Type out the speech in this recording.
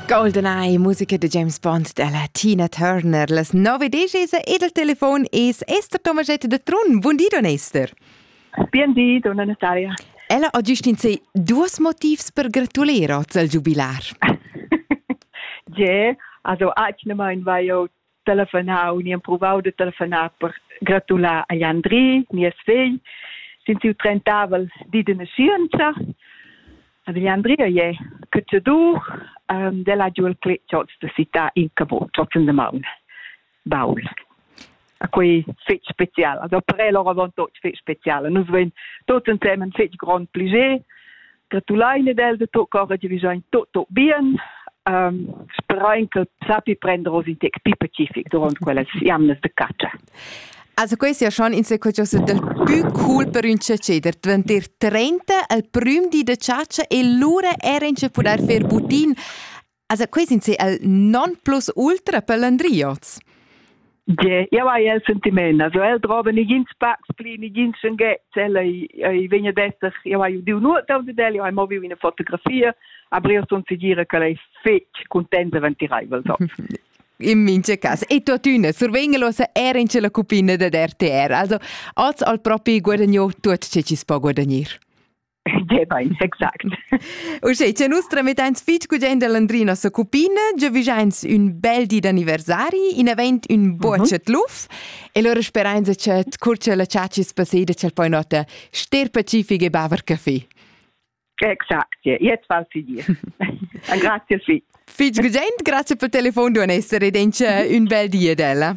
Goldeneye, musica de James Bond della Tina Turner. Las nove decesa e del telefon es Esther Tomaschette de Trun. Buon di, don Esther. Bien di, donna Natalia. Ella ha giustin sei duos motivs per gratuler oz al giubilar. Je, also eigentlich mein war ja telefonar u ni emprovau de telefonar per gratular agl Andri, nies vegl, sin siu trentavel di de nascienza. Agl Andri è cacciadur um, della giu il cletschot de città in Cabot, trotzen de maun, baul. A quei fetg special, also per el ora von tot fetg special. Nus vein tot ensemen fetg grond pliger, gratulein ed el de tot cora giavischein tot tot bien um, sperain che sappi prender oz in tec più pacific durant quellas jamnas de caccia. Also questo è schon in sequenza del più cool per un caceder. Dvanter 30 al prim di de caccia e lura era in ce poter fer butin Also qui sind sie el non plus ultra pelandriots. Ja, ja vai el sentiment, also el droben nigins packs pli, nigins schon get, el ei vegna desser, ja vai diu nur da de del, ja mo viu in fotografia, aber io sun sicura che lei fetch contenta ventiraivel so. In mince cas. E tuotüna, survegnelosa era in la cupina da RTR. Also, oz al propi guadagno tuot ce ci spo guadagnir. Deva ins exact. Uschè, che nus tramettains fitg gugent a Landrina sa cupina, giavigiains ün bel di d'anniversari, in event ün buochet luf, e lura sperains che cur la ciacis passeda ch'el poi nota ster pacific e baver caffè. Exact, jetzt val für dich. Grazie viel. Fitg gugent, grazie per telefon, du essere ed ün bel di ad ella.